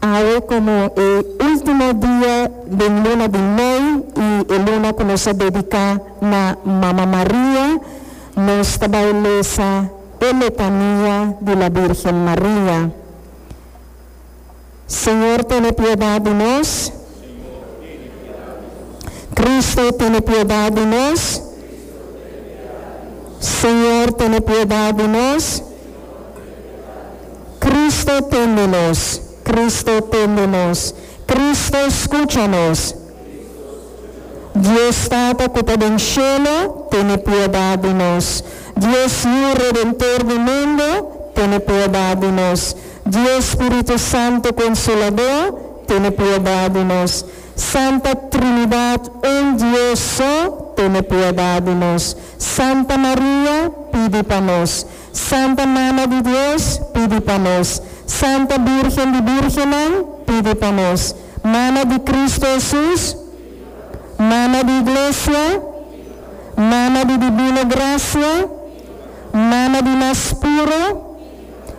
Awe komo e ultimo dia den luna di mei i e luna ku nos ta dediká na Mama Maria, nos ta bai lesa e Letania di la Bírgen Maria. Señor, tene piedat di nos. Kristu, tene piedat di nos. Señor, tene piedat di nos. Cristo tende nos, Cristo tende nos, Cristo scucha nos. Dios Tata cu ta den cielo, tene piedad di nos. Dios Yu Redentor di mundo, tene piedad di nos. Dios Spiritu Santo Consolador, tene piedad di nos. Santa Trinidad un Dios so, tene piedad di nos. Santa Maria, pidi pa nos. Santa Mama di Dios, pidi pa nos. Santa Bírgen di Bírgennan, pidi pa nos. Mama di Kristu Hesus, Mama di Iglesia, Mama di Dibino Grasia, Mama di Mas Puro,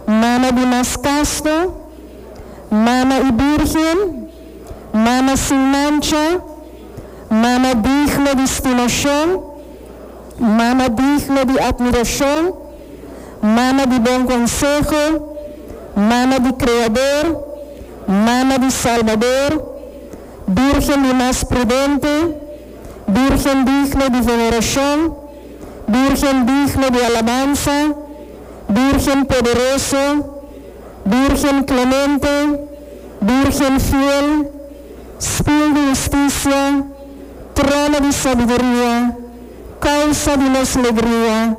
Mama di Mas Kasto, Mama i Bírgen, Mama sin mancha, Mama digno di stimashon, Mama digno di admiracion, Mama di bon conseho, Mama di Creador, Mama di Salbador, Birgen di mas prudente, Birgen digno di veneracion, Birgen digno di alabansa, Birgen poderoso, Birgen clemente, Birgen fiel, Spil di husticia, trono di sabiduria, causa di nos legria,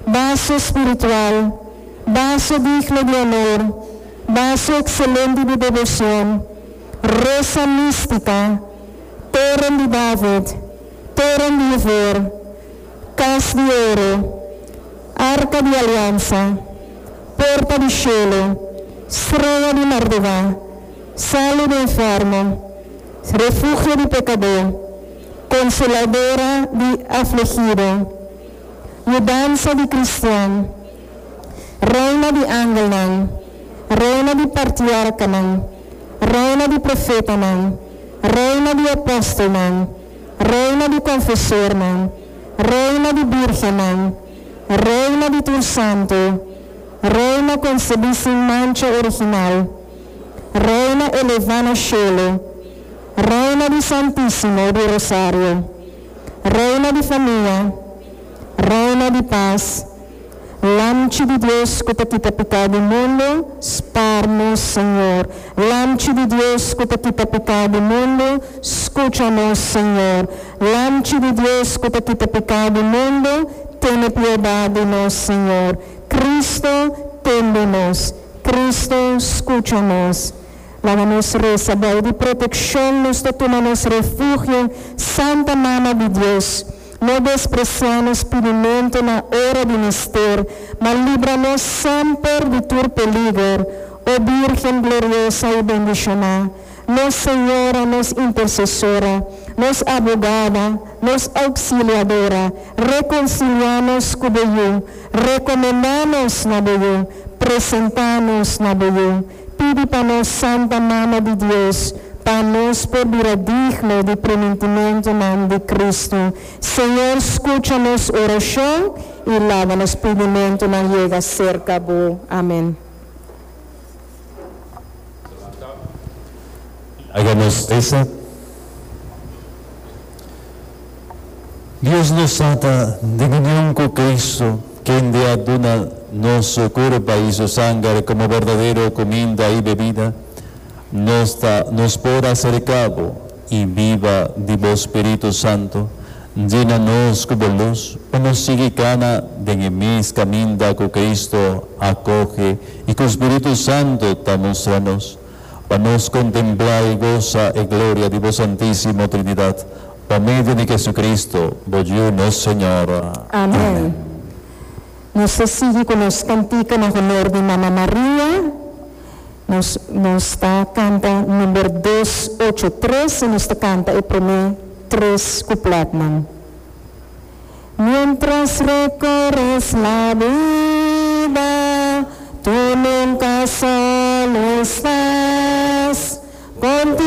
baso spiritual, baso digno di honor, baso excelente di devocion, rosa mistica, toren di David, toren di iver, cas di oro, arca di aliansa, porta di cielo, strea di mardega, Sali di inferno, refugio di pecadó, consoladora di afligido, yudansa di cristian, reina di angelnan, reina di partiercanan, reina di profetanan, reina di apostelnan, reina di confesornan, reina di birgennan, reina di tur santo, reina concebi sin mancha original. Reina Elevano Shelo, Reina di Santisimo di Rosario, Reina di Famia, Reina di Pas, Lamchi di Dios ku ta kita piká di mundu, spar nos, Señor. Lamchi di Dios ku ta kita piká di mundu, skucha nos, Señor. Lamchi di Dios ku ta kita piká di mundu, tene piedat di nos, Señor. Kristu, ten di nos. Cristo, scucha nos. Laga nos reza bay di proteccion nos ta tuma nos refugio, Santa Mama di Dios. No desprecia nos pidimento na ora di mister, ma libra nos semper di tur peliger, O Birgen gloriosa y bendicioná. nos Señora, nos Intercesora, nos Abogada, nos Auxiliadora, reconcilia nos cu bo Yu, recomenda nos na bo Yu, presenta nos na bo Yu, pidi pa nos Santa Mama di Dios pa nos por bira digno di promentimentonan di Cristo. Señor, scucha nos oracion y laga nos pidimentonan yega cerca bo. Amen. Laga nos resa. Dios nos sa ta den union cu Cristo, kende a duna nos su curpa y su sanger como berdadero cuminda y bebida. Nos ta nos por acerca bo. i biba di bo spiritu santu, djina nos ku bo lus pa nos sigui kana den e mes kaminda ku Kristu a koge i ku spiritu santu ta mustra nos, pa nos kontemplá i gosa e gloria di bo Santísimo Trinidat, pa medio di Hesukristu, bo Yu nos Señor. Amen. Nos ta sigui ku nos kantika na honor di Mama Maria. Nos nos ta canta number dos ocho tres y nos ta canta e prome tres coupletnan. Mientras recorres la vida tu nunca solo estás con tu.